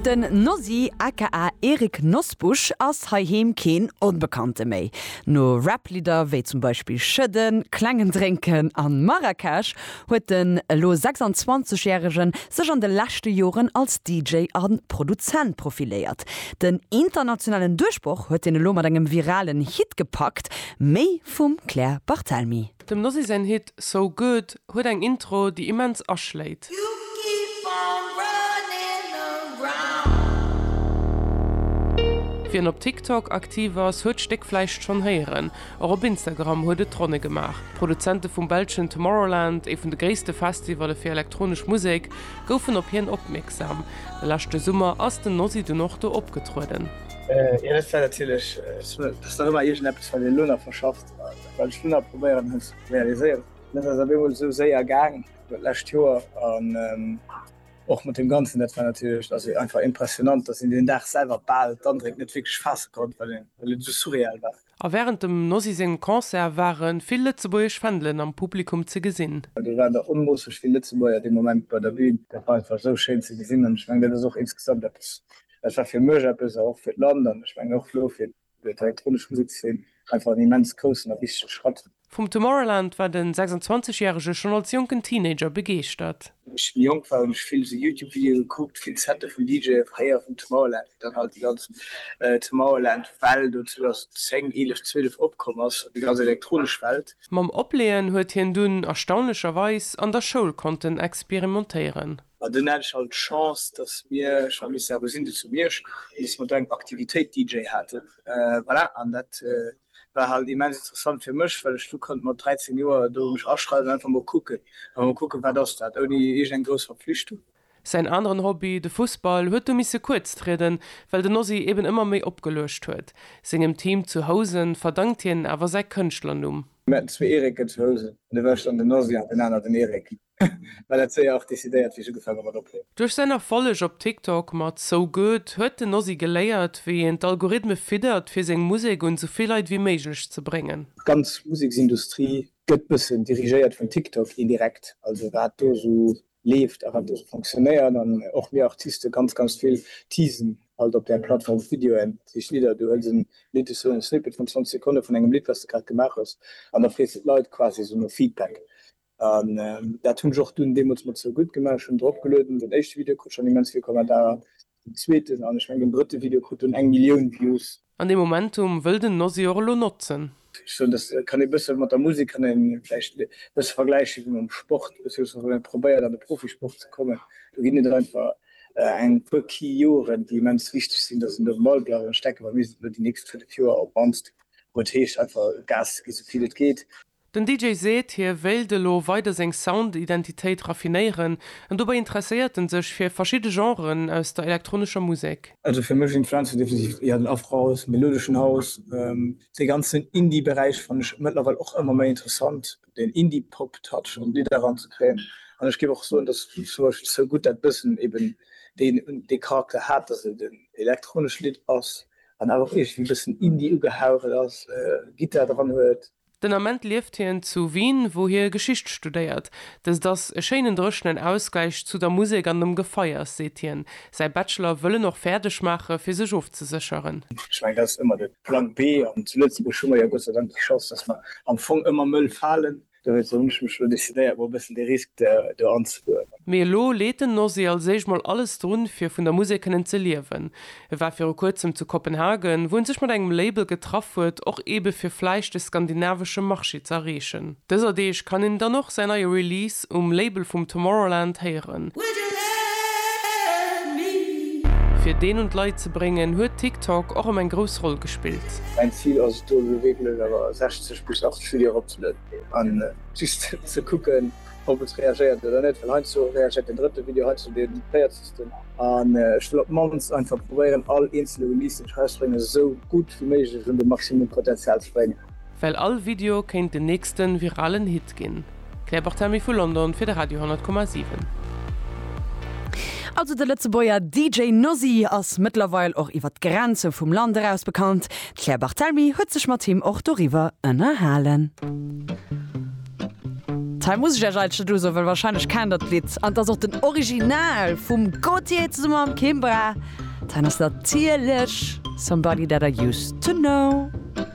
Den Nosy aka Erik Nosbusch ass heiheem keen Onbekannte méi. No Rap-Lidder wéi zum Beispill Schëdden, Klengen Drénken an Marrakesch huet den elo 26 järegen sech an de leschte Joren als DJ a Produzent profiléiert. Den internationalen Duerchbroch huet hien elo mat engem viralen Hit gepackt, Méi vum Claire Barthelmy. Dem Nosy säin Hit So Good huet eng Intro, déi immens aschléit. Wien op TikTok aktiv ass, huet d'Stéck vläicht schonn héieren. Och op Instagram huet et d'Ronne gemaach. D'Produzente vum belschen Tomorrowland, ee vun de gréisste Festivalle fir elektronesch Musek, goufen op hien opmierksam. De leschte Summer ass den Nosy dunn och do opgetrueden. Wat ech dunn nach probéieren hunn ze realiséieren, dat ass op eemol esou séier gaang d'lescht Joer an och mat deem Ganzen, dat war natierlech also einfach impressionnant, dass een deen Dag selwer bal d'Andréck net wierklech faasse konnt, well et esou surreal war. A wärend dem Nosy sengem Concert ware vill lëtzebuergesch Fändelen am Publikum ze gesinn. Do waren der onmoosseg vill Lëtzebuerger dee Moment bei der Bün. Dat war einfach esou schéin ze gesinn an ech mengen, dat ass och insgesamt eppes, dat war fir mech eppes a och fir d'Land an ech mengen och elo fir Fir d'elektronesch Musekszeen einfach en immens groussen a wichtege Schratt. Vum Tomorrowland war den 26 Järege schonn als jonken Teenager begeeschtert. Wéi ech méi jonk war hunn ech vill esou Youtube Videoe gekuckt, vill Sette vun DJe veréiert vum Tomorrowland, wéi dann halt déi ganz Tomorrowland Well do 2010, 11, 12 opkomm ass, déi ganz elektronesch Welt. Mam Opleeën huet hien dunn erstaunlecherweis an der Schoul konnten experimentéieren. An dunn hat ech halt d'Chance, dass mir, ech war Mister Abesinde zu Miersch, an dass mer do eng Aktivitéit DJ haten. Voilà, an dat war halt immens interessant fir mech, well ech du konnt mat 13 Joer do mech aschreiwen an einfach mol kucken, einfach mol kucken, wat ass dat, ouni iergend eng grouss Verpflichtung. Säin aneren Hobby, de Fussball, huet du misse kuerz trieden, well den Ozzy eben ëmmer méi opgeluecht huet. Sengem Team zu Housen verdankt hien awer säi Kënschtlernumm. Mir haten zwee Erike zu Housen, an da war ech dann den Ozzy an den aner den Erik. Well dat séier och decidéiert wéi ech ugefaang hu mat ophuelen. Duerch säin Erfolleg op TikTok mat So Good huet den Ozzy geléiert wéi een d'Algorithme fiddert fir seng Musek un sou vill Leit wéi méiglech ze bréngen. D'ganz Museksindustrie gëtt bëssen dirigéiert vun TikTok indirekt, also wat do sou leeft a wat do sou fonctionnéiert an och mir Artiste ganz ganz vill teasen alt op där Plattform d'Videoen, sech Lidder, du hëls en Lidd, esou en Snippet vun 20 Sekonne vun engem Lidd wat s de grad gemaach hues an da frees de d'Leit quasi esou no Feedback. An dat hunn ech och dunn deemools mat Sou gutt gemaach. Ech hunn drop gelueden. Den éischte Video krut schonn immens vill Kommentarer. Den zweeten an ech mengen den drëtte Video krut dunn eng Millioun Views. An dee Momentum wëll den Nosy och elo notzen. Ech soen, dass kann ee bësse mat der Musek kann ee vläicht bësse vergläiche wéi mam Sport. Ech soen, wann ee probéiert an de Profisport ze kommen, do ginn et einfach eng puer Key Joren, déi immens wichteg sinn, dass een do um Ball bleift. An ech denken, wa mir sinn elo déi nächst fënnef Joer op mannst, wou et heescht einfach Gas ze ginn, esou vill et geet. Den DJ seet, hie wéilt elo weider seng Sound-Identitéit raffinéieren, an dobäi interesséiert en sech fir verschidde Genren aus der elektronescher Musek. Also fir mech influenze definitiv eher den Afrohouse, melodeschen House, dee ganzen Indie-Beräich fannen ech mëttlerweil och ëmmer méi interessant, deen Indie-Pop-Touch an d'Lidder eranzekréien. An ech géif och soen, dass zum Beispill So Good dat bëssen eben dee Charakter hat, dass et en elektronescht Lidd ass an awer och iergendwéi e bëssen Indie ugehaucht ass, Gittar dran huet. Den Ament lieft hien zu Wien, wou hie Geschicht studéiert. Dëst ass e schéinen dréchenen Ausgläich zu der Musek an dem Gefeiers, seet hien. Säi Bachelor wëll en och fäerdeg maache fir sech ofzesécheren. Ech mengen, dat ass ëmmer de Plan B. An zu Lëtzebuerg hu mer jo Gott sei Dank déi Chance, datt mer am Fong ëmmer mëll falen. Dowéinst hunn ech mech elo decidéiert, mol e bëssen de Risk do anzegoen. Mee elo leet den Nosy als éischt mol alles drun, fir vun der Musek kënnen ze liewen. E war viru kuerzem zu Kopenhagen, wou en sech mat engem Label getraff huet, och eebe fir vläicht de skandinavesche Marché ze erreechen. Dëser Deeg kann een dann och säin neie Release um Label vum Tomorrowland héieren. Fir deen un d'Leit ze bréngen, huet TikTok och ëm eng grouss Roll gespillt. Mäin Zil ass et do elo wierklech awer 60 bis 80 Videoen eropzelueden an just ze kucken, ob et reagéiert oder net, well heiansdo reagéiert den drëtte Video, heiansdo deen véierzegsten an ech wëll op d'mannst einfach probéieren all eenzele Release deen ech erausbréngen esou gutt wéi méiglech un de Maximum Potenzial ze bréngen. Well all Video kéint den nächsten viralen Hit ginn. Claire Barthelmy vu London fir de Radio 10,7. Also de Lëtzebuerger DJ Nozzy ass mëttlerweil och iwwer d'Grenze vum Land eraus bekannt. D'Claire Barthelmy huet sech mat him och doriwwer ënnerhalen. Hei muss ech iech eigentlech net usoen, well wahrscheinlech kennt der d'Lidd. An et ass och den Original vum Gaultier zesumme mam Kimbra. Hei ass natierlech Somebody That I Used To Know.